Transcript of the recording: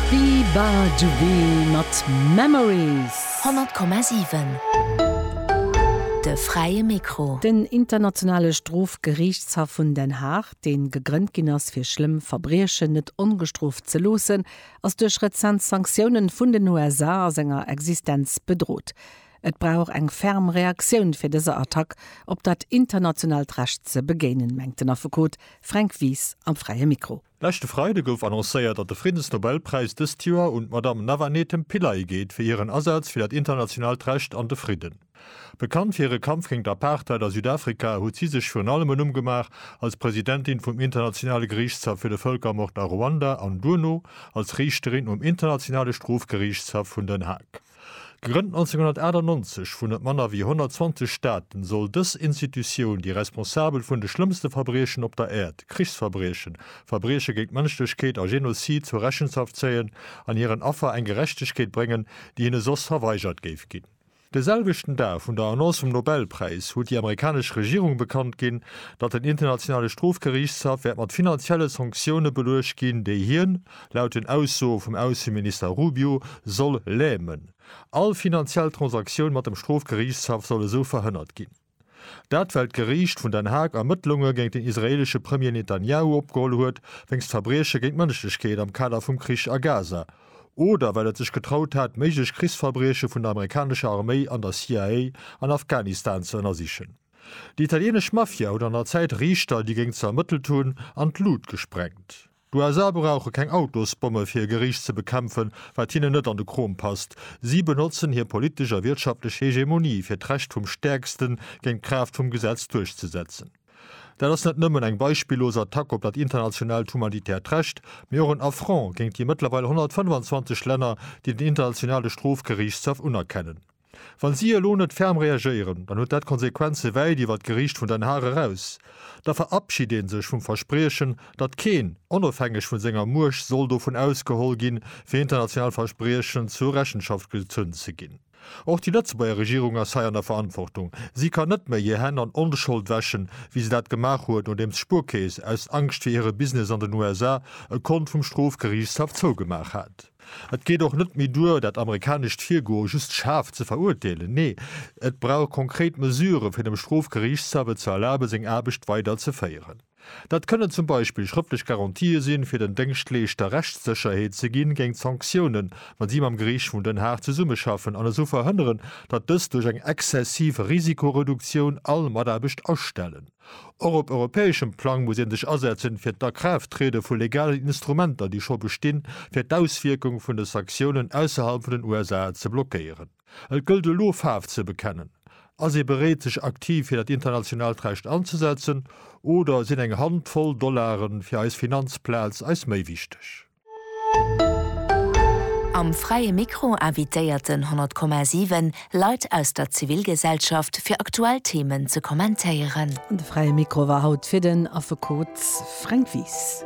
Biba Dubé mat Memories. 100,7 De fräie Mikro. Den Internationale Strofgeriichtshaff vun Den Haag, dee gegrënnt ginn ass fir schlëmm Verbriechen net ongestrooft ze loossen, ass duerch rezent Sanktiounen vun den USA a senger Existenz bedrot. Et brauch eng ferm Reaktioun fir dëser Attack op dat internationaalt Recht ze begéinen, mengt den Affekot Fränk Wies am fräie Mikro. Leschte Freide gouf annoncéiert, datt de Friddensnobelpräis dëst Joer un d'Madame Navanethem Pillay geet fir hiren Asaz fir dat internationaalt Recht an de Fridden. Bekannt fir hire Kampf géint d'Apartheid a Südafrika, huet si sech virun allem en Numm gemaach als Presidentin vum Internationale Geriichtshaff fir de Vëlkermord a Ruanda an duerno als Riichterin um Internationale Strofgeriichtshaff vun Den Haag. Gegrënnt 1998 vun net manner wéi 120 Staaten, soll dës Institutioun déi Responsabel vun de schlëmmste Verbriechen op der Äerd, Krichsverbriechen, Verbrieche géint d'Mënschlechkeet a Genozid zur Rechenschaft zéien an hiren Affer eng Gerechtegkeet bréngen, déi hinne soss verweigert géif ginn. De selwechten Dag vun der Annonce vum Nobelpräis huet déi amerikanesch Regierung bekannt ginn, datt den Internationale Strofgeriichtshaff wäert mat finanzielle Sanktioune beluecht ginn, déi hien, Laut den Aussoe vum Ausseminister Rubio soll lämen, all finanziell Transaktioun mat dem Strofgeriichtshaff soll esou verhënnert ginn. Dat well d'Geriicht vun Den Haag Ermëttlunge géint den israeelesche Premier Netanjahu opgeholl huet wéinst Verbrieche géint d'Mënschlechkeet am Kader vum Krich a Gaza oder well et sech getraut hat méiglech Krichsverbrieche vun der amerikanescher Arméi an der CIA an Afghanistan ze ënnersichen. Déi italienesch Mafia huet an der Zäit Riichter, déi géing ze ermëttelt hunn, an d'Lut gesprengt. D'USA brauche keng Autosbomme fir hir Geriicht ze bekämpfen, wat hinnen net an de Krom passt. Si benotzen hir politesch a wirtschaftlech Hegemonie fir d'Recht vum Stäerksten géint d'Kraaft vum Gesetz duerchzesetzen. Dat ass net nëmmen eng beispillos Attack op dat internationaalt humanitäert Recht, mee och en Affront géint déi mëttlerweil 125 Länner, déi den Internationale Strofgeriichtshaff unerkennen. Wa si elo net ferm reagéieren, dann huet dat Konsequenze wäit iwwer d'Geriicht vun Den Haag eraus. Da verabschid een sech vum Verspriechen, datt keen, onofhängeg vun senger Muecht, soll dovun ausgeholl ginn, fir international Verspriechen zur Rechenschaft gezunn ze ginn. Och déi Lëtzebuerger Regierung ass hei an der Verantwortung. Si kann net méi hir Hänn an Onschold wäschen, wéi se dat gemaach huet, nodeems d'Spuerkeess, aus Angscht fir hire Business an den USA, e Kont vum Strofgeriichtshaff zougemaach hat. Et geet och net méi duer, dat amerikanescht Virgoe just schaarf ze verurteelen. Nee, et brauch konkret Mesuren, fir dem Strofgeriichtshaff et ze erlaben, seng Aarbecht weider ze féieren. Dat kënnen zum Beispill schrëftlech Garantië sinn, fir den Déngschtleeschter Rechtssécherheet ze ginn géint Sanktiounen, wa si mam Geriicht vun Den Haag zesummeschaffen, an esou verhënneren, datt dës duerch eng exzessiv Risikoreduktioun all Mataarbecht astellen. Och op europäeschem Plang muss ee sech asetzen, fir d'Akraafttriede vu legalen Instrumenter, déi scho bestinn, fir d'Auswierkung vun de Sanktiounen ausserhalb vun den USA ze blockéieren. Et gëllt elo, Faarf ze bekennen. Ass ee bereet, sech aktiv fir dat internationaalt Recht anzesetzen, oder sinn eng Hand voll Dollaren fir eis Finanzplaz eis méi wichteg? Am Fräie Mikro invitéierten 100,7 Leit aus der Zivilgesellschaft fir aktuell Themen ze kommentéieren. An de Fräie Mikro war haut fir den Affekot Fränk Wies.